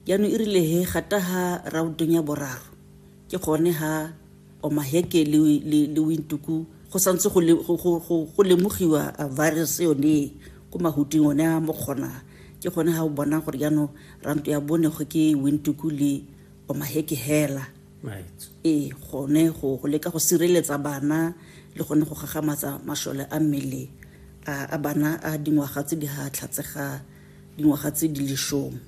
Jaanong e rile he gata ha rautong ya boraro, ke gone ha Omaheke le, le, le Windhoek go santse go, le, go, go, go, go lemogiwa virus yone ko mahuting one a mokgona. Ke gone ha o bonang gore jaanong ranto ya bone go ke Windhoek le Omaheke hela. Right. ee gone go go leka go sireletsa bana le gone go gagamatsa masole a mmele a bana a dingwaga tse di ga tlhatse ga dingwaga tse di lesome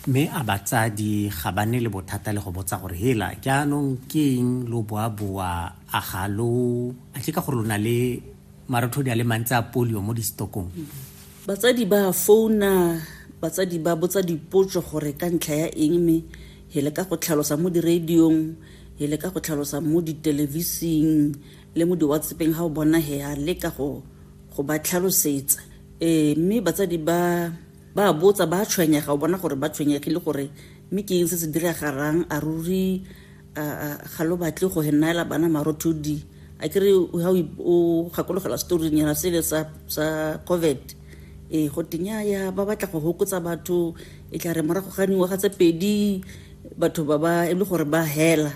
mme a batsadi ga ba ne le bothata le go botsa gore hela jaanong ke eng lo boaboa a ga lo a ke ka gore lo na le marothodi a le mantsi a polio mo distokong batsadi ba founa batsadi ba botsa dipotso gore ka ntlha ya eng mme hele ka go tlhalosa mo diradiong hele ka go tlhalosa mo ditelevising le mo diwatsepeng ga o bona he a leka go go ba tlhalosetsa ee mme batsadi ba ba botsa ba tshwenyega o bona gore ba tshwenyegile gore mme ke eng se se diragarang a ruri ga lo batle go henaela bana marothodi a kere ga o gakologela storing ya sele sa sa covid e go tenya ya ba batla go hokotsa batho e tla re morago ga dingwaga tse pedi batho ba ba e le gore ba hela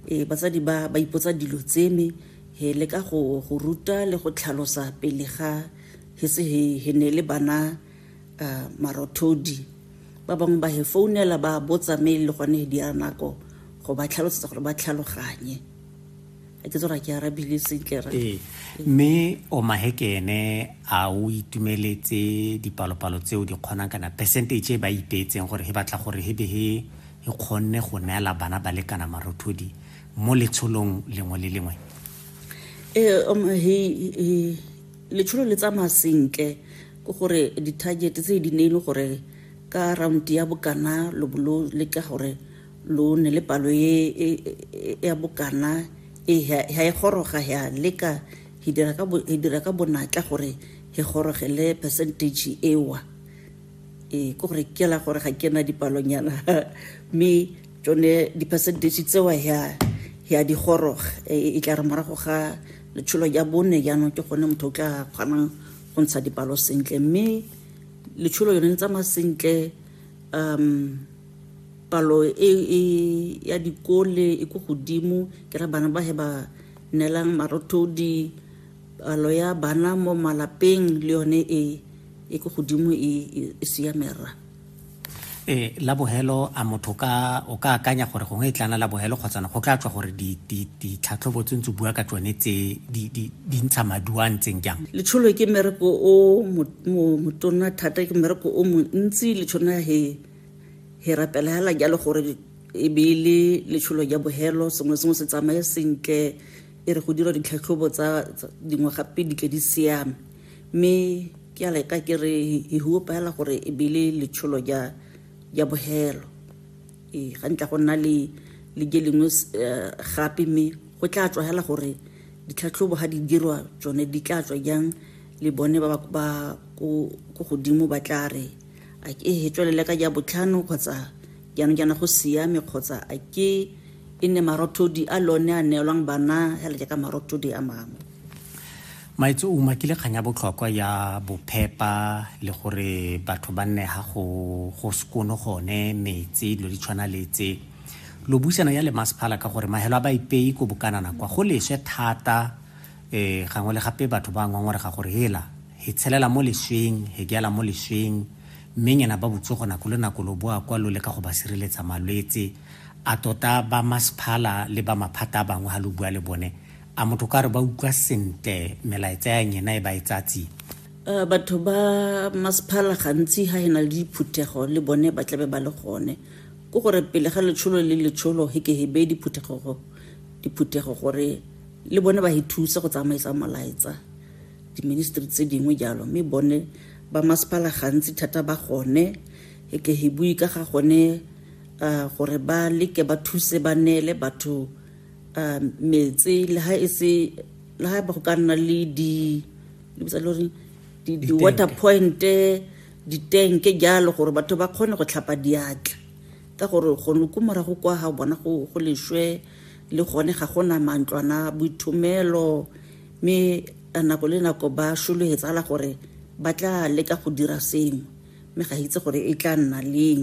e batsadi ba ba ipotsa dilo tseme he le ka go go ruta le go tlhalosa pele ga hetse he he ne le bana uh, marothodi ba bangwe ba he founela ba botsa me e le gone di ya nako go ba tlhalosetsa gore ba tlhaloganye a ke tsora ke arabile sentle ra ee mme o mahekene a o itumeletse dipalopalo tseo di kgonang kana percentage e ba ipeetseng gore he batla gore he be he e kgonne go neela bana ba lekana marothodi mo letsholong lengwe le lengwe e um, letsholo le tsamaya sentle ke gore di-target tse di ne e le gore ka round ya bokana lo bo lo leka gore lo ne le palo e, e, e, ya bokana e ha e goroga ya leka e dira ka bonatla gore e gorogele percentage ewa ee ke gore ke la gore ga ke na dipalonyana mme tsone di-percentage tsewa ya ya digoroga e, e tla re morago ga letsholo ya bone jaanong ke gone motho o tla kgonang go ntsha dipalo sentle mme letsholo yone le tsamaya sentle um palo e, e ya dikole e ko godimo ke ra bana ba he ba nelang marothodi palo ya bana mo malapeng le yone e e ko godimo e, e, e siamera e la bogelo a motho ka o ka akanya gore gongwe e tlana la bogelo kgotsana go tla tswa gore ditlhatlhobo tse ntse bua ka tsone tse di ntsha maduo a ntseng jang letsholo ke mmereko o motona thata ke mmereko o montsi letshona he he rapela hela jalo gore e be e le letsholo ja bogelo sengwe sengwe se tsamaye sentle e re go dira ditlhatlhobo tsa dingwe gape di tle di siame mme ke a leka ke re e huopaela gore e be le letsholo ja ja bohelo ee ga ntla go nna le le je lengwe eh, gape mme go tla tswa hela gore ditlhatlhobo ga di dirwa tsone di tla tswa jang le bone ba ba ko godimo ba tla re a ke e tswelele ka ja botlhano kgotsa jaanong jaana go siame kgotsa a ke e nne marothodi a lone a neelwang bana fela jaaka marothodi a mangwe maitse o umakile kgang ya botlhokwa ya bophepa le gore batho ba nne ga go go sekono gone metse dilo di tshwana le tse lo buisana ya le masephala ka gore mahelo a ba ipei ko bokanana kwa go leswe thata um gangwe le gape batho ba ngongorega gore hela He tshelela mo lesweng, he geala mo lesweng, mme nyena ba botsogo nako le nako lo boa kwa lo leka go ba sireletsa malwetse. A tota ba masephala le ba maphata a bangwe ha lo bua le bone, a motho ka re ba utlwa sentle melaetsa ya nyena e ba e tsaya tsia? Uh, batho ba masephala gantsi ha e na le diphuthego le bone ba tlabe ba le gone ko gore pele ga letsholo le letsholo he ke he beye diphuthego diphuthego gore le bone ba he thusa go tsamaisa molaetsa diministri tse dingwe jalo mme bone ba masepala gantsi thata ba gone e ke he bue ka ga gone uh, gore ba leke ba thuse ba neele batho uh, metse le ha e se le ha ba go ka nna le di lebitsa le gore di-water pointe ditenke jalo gore batho ba kgone go tlhapa diatla ka gore gone ko morago kwa ga bona go leswe le gone ga gona mantlwana boithomelo mme nako le nako ba shologe tsala gore ba tla leka go dira sengwe mme ga itse gore e tla nna leng